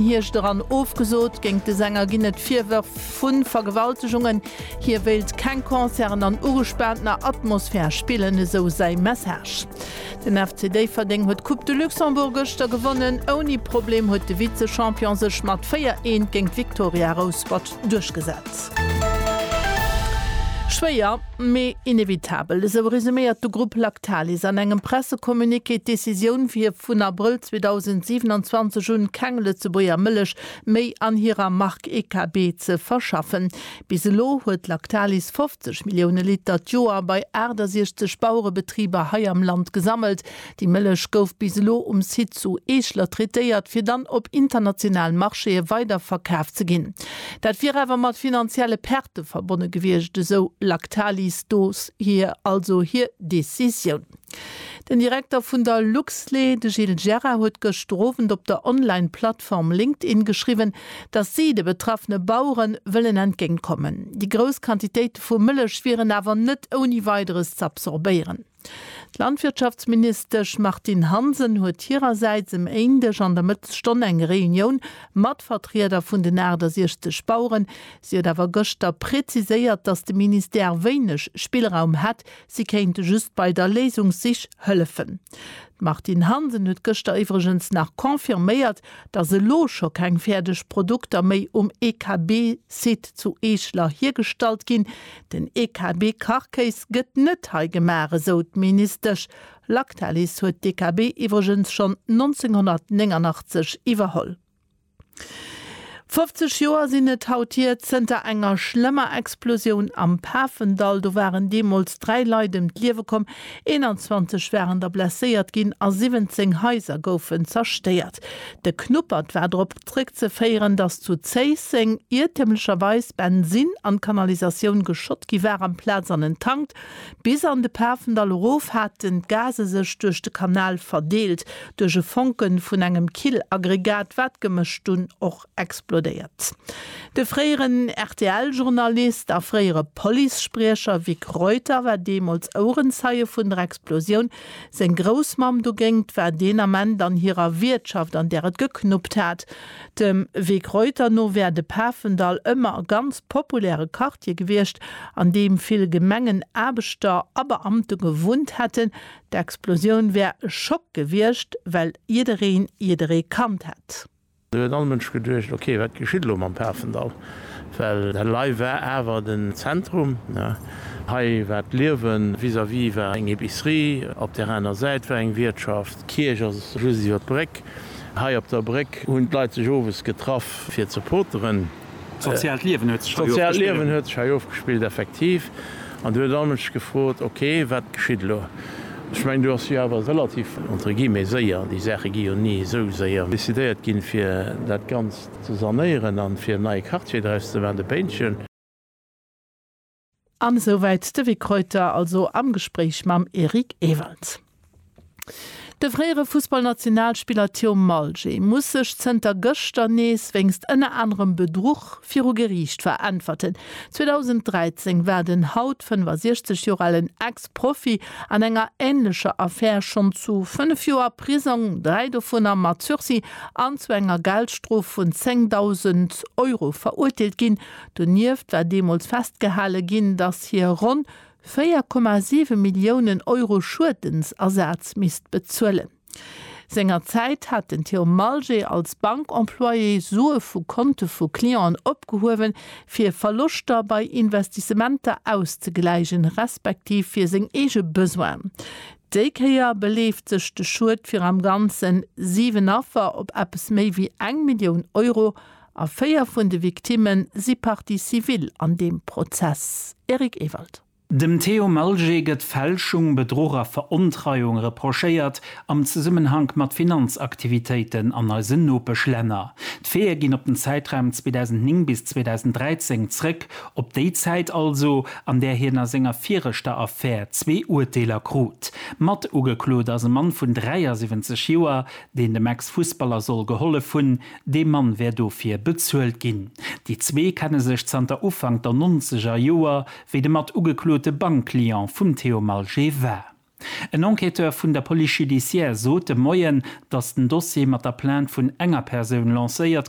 Hierscht eran ofgesot. Géingt de Sänger ginn et Virwërf vu Vergewaltegungen. Hie wéilt keng Concerten an ugespaantener Atmosphär spillen, esou säi Message. Den FC Déifferdeng huet d'Coupe de Luxembourg gëschter gewonnen. Ouni Problem huet de Vize-Champion sech mat 4, 1 géint d'Victoria Rouspert duerchgesat. Schwéier, mee inevitabel, esou resuméiert de Grupp Lactalis an engem Pressecommuniqué d'Decisioun, fir vun Abrëll 2027 un keng Lëtzebuerger Mëllech méi an hirer Mark EKB ze verschaffen. Bis elo huet Lactalis 50 Millioune Liter d'Joer bei 68 Bauerebetriber hei am Land gesammelt, Déi Mëllech gouf bis elo um Site zu Eeschler traitéiert, fir dann op internationalen Marchéë weider verkaf ze ginn. Dat wier awer mat finanzielle Perte verbonne gewiescht, esou Lactalis do hir also hir Decisioun. Den Direkter vun der Luxlé, de Gilles Gerard, huet gëschter Owend op der Online-Plattform LinkedIn geschriwwen, datt si de betraffene Bauere wëllen entgéint kommen. Déi grouss Quantitéite vu Mëllech wieren awer net ouni Weideres z'absorbéieren. D'Landwirtschaftsministesch Martine Hansen huet hirersäits e Méindeg an der Mëttesstonn eng Reunioun mat Vertrieder vun den 68 Baueren. Si huet awer gëschter präziséiert, datt de Ministère wéineg Spillraum hätt, si kéinte just bei der Léisungssich hëllefen. D'Martine Hansen huet gëschter iwwregens nach confirméiert, datt elo scho keng fäerdeg Produkter méi um EKB-Site zu Eeschler hiergestallt ginn. Den EKB-Karkéis gëtt net hei gemaach, esou d'Ministesch. Lactalis huet d'EKB iwwregens schonn 1989 iwwerholl. 50 Joer sinn et haut hier, zënter enger schlëmmer Explosioun am Pafendall. Do waren deemools dräi Leit ëm d'Liewe komm, 21 waren da blesséiert ginn a 17 Haiser goufen zerstéiert. De Knuppert war drop. Zréckzeféieren, datt zu Zéisseng iertemlecherweis Bensin an d'Kanalisatioun geschott gi war amplaz an en Tank. Bis an de Pafendall erof haten d'Gase sech duerch de Kanal verdeelt, duerch e Fonke vun engem Killaggregat, wat gemëscht dunn och explodéiert. De fréieren RTL-Journalist a fréiere Policespriecher Vic Reuter war deemools Ouerenzeie vun der Explosioun, Seng Groussmamm dogéngt war deen Ament an hirer Wiertschaft, an där et geknuppt hat. Dem Weg Reuter no wär de Pafendall ëmmer e ganz populäre Quartier gewiescht, an deem vill Gemengenaarbechter a Beamte gewunnt hätten. D'Explosioun wär e Schock gewiescht, well jiddereen jidderee kannt hätt. Do huet all Mënsch geduecht, ok, wat geschitt elo mam Pafendall? Well hei war awer den Zentrum, hei war d'Liewen. Vis-à-vis war eng Epicerie, op där aner Säit war eng Wiertschaft, d'Kierch ass just iwwer d'Bréck. Hei op der Bréck hunn d'Leit sech owes getraff, fir ze poteren. Soziaalt Liewen huet sech hei ofgespillt, effektiv. An du huet all Mënsch gefrot, ok, wat geschitt elo? Ech mengen, do ass jo awer relativ, entre guillemets, séier, déi Saache gi jo ni esou séier, decidéiert ginn, fir dat Ganzt ze sanéieren a fir en neie Quartier draus ze maachen, de Péintchen. An esou wäit de Vic Reuter also am Gespréich mam Eric Ewald. De fréiere Fussballnationalspiller Thiaum Malje muss sech zënter gëschter nees wéinst ënner anerem Bedruch viru Geriicht veräntwerten. 2013 war den haut 65 Joer alen Ex-Profi an enger änlecher Affär schonn zu fënnef Joer Prisong, dräi dovunner mat Sursis, an zu enger Geldstrof vun 10.000 Euro verurteelt ginn. Donieft war deemools festgehale ginn, datt hie ronn 4,7 Milliounen Euro Schuedensasaz misst bezuelen. Sengerzäit hat den Theo Malgé als Bankemployé Sue vu Konte vu Clienten opgehuewen, fir Verloschter bei Investissementer auszegläichen, respektiv fir seng eege Besoinen. Déi Kéier beleeft sech de Schued fir am Ganzen 7 Affer op eppes méi wéi eng Millioun Euro. A véier vun de Victimme si Partie civile an deem Prozess. Eric Ewald. Dem Théo Malger gëtt Fälschung, Bedruch a Verontreiung reprochéiert am Zesummenhank mat Finanzaktivitéiten an eisen Nopeschlänner. D'Faite ginn op den Zäitraum 2009 bis 2013 zrëck, op déi Zäit also, an där hien a senger viregter Affär zwee Urteeler krut. Matugeklot ass e Mann vun 73 Joer, deen dem Ex-Fussballer soll gehollef hunn, Dee Mann wär dofir bezuelt ginn. Déi zwee kenne sech zanter Ufank der nonzeger Joer, wéi de mat ugeklote Bankclient vum Theo Malgé war. En Enquêteur vun der Police judiciaire sot de Moien, datt den Dossier mat der Plainte vun enger Persoun lancéiert